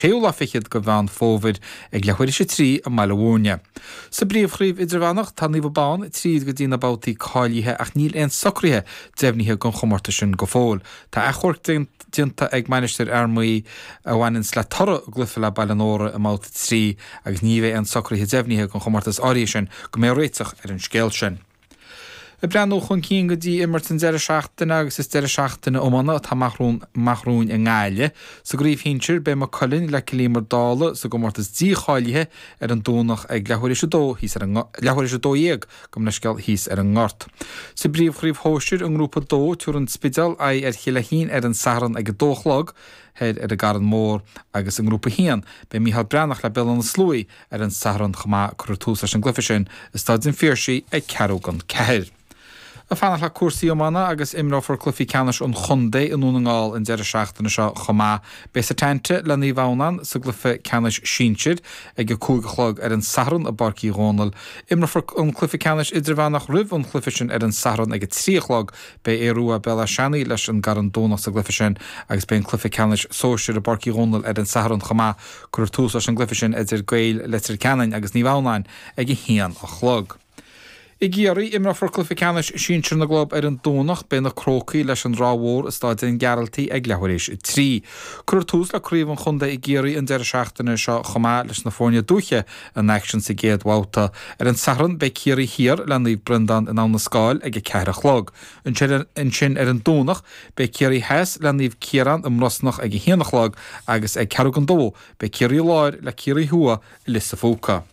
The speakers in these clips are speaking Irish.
6ú lá fichead de Mheán Fómhair ag leathuair éis a 3 i mBaile Mhúirne. Sa bPríomhchraobh Idirmheánach, tá Naomh Abán tríd go dtí na babhtaí cáilithe ach níl aon socruithe deimhnithe don chomórtas sin go fóill. Tá achomharc déanta ag Mainistir Fhear Maí a bhaineanns le toradh a gcluife le Baile an Óraidh i mbabhta 3 agus ní bheidh aon socruithe deimhnithe don chomórtas áirithe sin go mbeidh réiteach ar an scéal sin. Ag breathnú chun cinn go dtí imirt an deireadh seachtaine agus is deireadh seachtaine iomána atá amach romhainn i nGaillimh. Sa gcraobh shinsir, beidh Maigh Cuilinn le Cill Íomair Uí Dhálaigh sa gcomórtas dícháilithe ar an Domhnach ag leathuair éis a dó dhéag gabh mo leithscéal thíos ar an nGort. Sa bpríomhchraobh shóisir i nGrúpa 2, tabharfaidh an Spidéal aghaidh ar Chill Laichtín ar an Satharn ag a dó a chlog thoir ar an gCarn Mór agus i nGrúpa 1, beidh Micheál Breathnach le Béal Átha na Sluaighe Ar an Satharn chomh maith cuirfear tús leis an gcluiche sin i Staid an Phiarsaigh ag ceathrú gan ceathair. Ag fanacht le cúrsaí iomána agus imreofar cluichí ceannais an chontae i nDún na nGall an deireadh seachtaine seo chomh maith. Beidh Setanta le Naomh Adhamhnán sa gcluiche ceannais sinsir. Ag a cúig a chlog ar an Satharn i bPáirc Uí Dhónaill imreofar an cluiche ceannais idirmheánach roimh an chluiche sin ar an Satharn ag a trí a chlog beidh Aodh Ruadh, Béal Átha Seanaidh leis an gCarn Domhnach sa gcluiche sin agus beidh an cluiche ceannais sóisir i bPáirc Uí Dhónaill ar an Satharn chomh maith. Cuirfear tús leis an gcluiche sin idir Gaeil Leitir Ceanainn agus Naomh Adhamhnáin ag a haon a chlog. I gCiarraí, imreofar cluiche ceannais sinsir na gclub ar an Domhnach. Beidh na Crócaigh leis an Ráth Mhór i Staid an Ghearaltaigh ag leathuair éis a trí. Cuirfear tús le craobh an chontae i gCiarraí an deireadh seachtaine seo chomh maith leis na foirne dúiche in aicsean sa gcéad bhabhta. Ar an Satharn, beidh Ciarraí Thiar le Naomh Breandán in Abha na Scáil ag a ceathair a chlog. Ansin ar an Domhnach beidh Ciarraí Theas le Naomh Ciarán i mBrosnach ag a haon a chlog agus ag ceathrú gan dó beidh Ciarraí Láir le Ciarraí Thuaidh i Lios an Phúca.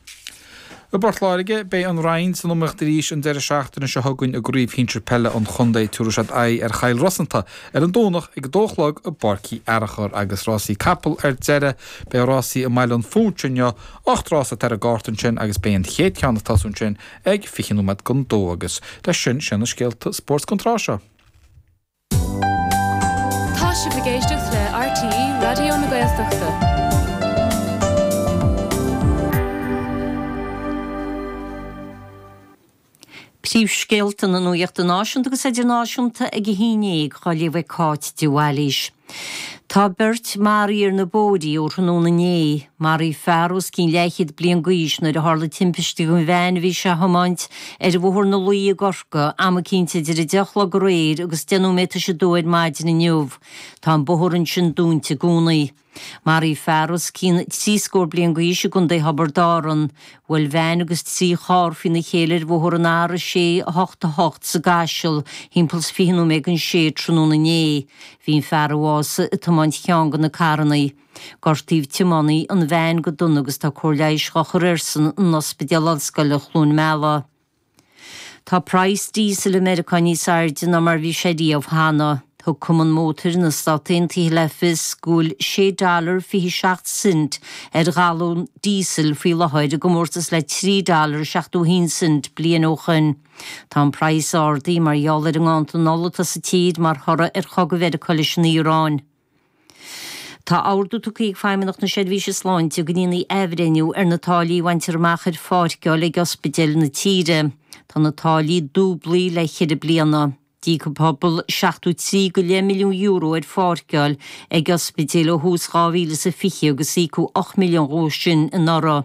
I bPort Láirge beidh an Rinn san iomaíocht arís an deireadh seachtaine seo chugainn i gcraobh shinsir peile an chontae. Tabharfaidh siad aghaidh ar Chill Rosanta ar an Domhnach ag a dó a chlog i bPáirc Uí Fhearachair. Agus rásaí capall ar deireadh beidh rásaí i mBaile an Phúitse inniu. Ocht rása atá ar an gcárta ansin agus beidh an chéad cheann ag tosú ansin ag fiche nóiméad gan dó agus leis sin sin é na scéalta spóirt don tráth seo. Tá sibh ag éisteacht le RTÉ Raidió na Gaeltachta. Príomhscéalta na nuachta náisiúnta agus idirnáisiúnta ag a haon dhéag, á léamh ag Cáit de Bhailís. Tá beirt maraithe ar na bóithrí ó thráthnóna inné. Maraíodh fear os cionn leathchéad bliain d'aois nuair a tharla timpiste don veain a bhí sé a thiomáint ar Bhóthar na Laoi i gCorcaigh, am eicínt idir 10 a chlog aréir agus 10 nóiméad tar éis a dó ar maidin inniu. Tá an bóthar ansin dúnta i gcónaí. Maraíodh fear os cionn trí scór bliain d'aois i gContae Thiobraid Árann. Bhuail veain agus trí charr faoina chéile ar bhóthar an R688 sa gCaiseal thimpeall is fiche nóiméad don sé tráthnóna inné. Bhí an fear a bhásaigh ag tiomáint cheann de na carranna. Gortaíodh tiománaí an veain go dona agus tá cóir leighis dhá chur airsean in Ospidéal Ollscoile Chluain Meala. Tá praghas díosail i Meiriceá níos airde ná mar bhí sé riamh cheana. Thug cumann mótair na Stát Aontaithe le fios go bhfuil sé dollar fiche seacht cent ar ghalún díosail faoi láthair, i gcomórtas le trí dollar seachtó haon cent bliain ó shoin. Tá an praghas ardaithe mar gheall ar an nganntan ola atá sa tír mar thoradh ar chogadh Mheiriceá leis an Iaráin. Tá ordú tugtha ag Feidhmeannacht na Seirbhíse Sláinte go ndéanfaí athbhreithniú ar na táillí a bhaintear amach ar pháirceáil ag ospidéil na tíre. Tá na táillí dúblaithe le ceithre bliana. D'íoc an pobal seachtó trí go leith milliún euro ar pháirceáil ag ospidéil ó thús 2020 agus íocadh ocht milliún dhó sin anuraidh.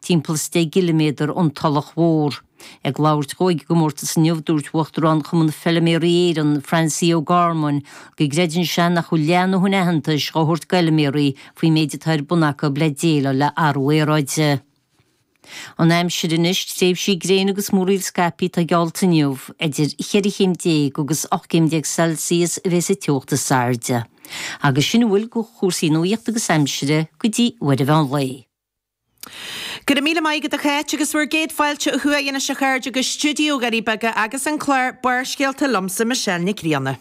timpeall is deich gciliméadar ón Tulach Mhór. Ag labhairt dhó ag an gcomórtas inniu, dúirt Uachtarán Chumann Feilméaraí Éireann, Francie O'Gorman, go gcreideann sé nach bhfuil leath a ndóthain aitheantais dhá thabhairt d'fheilméaraí faoin méid atá ar bun acu le déileáil le athrú aeráide. An aimsir anois, tréimhsí gréine agus múraíl scaipthe atá geallta inniu. Idir cheithre chéim déag agus ocht gcéim déag Celsius a bheidh sa teocht is airde. Agus sin a bhfuil de chúrsaí nuachta agus aimsire go dtí uair an mheán lae. Go raibh míle maith agat a Cháit, agus bhur gcéad fáilte ó thuaidh anois a chairde go stiúideo Dhoirí Beaga agus an clár Barrscéalta liomsa Michelle Nic Grianna.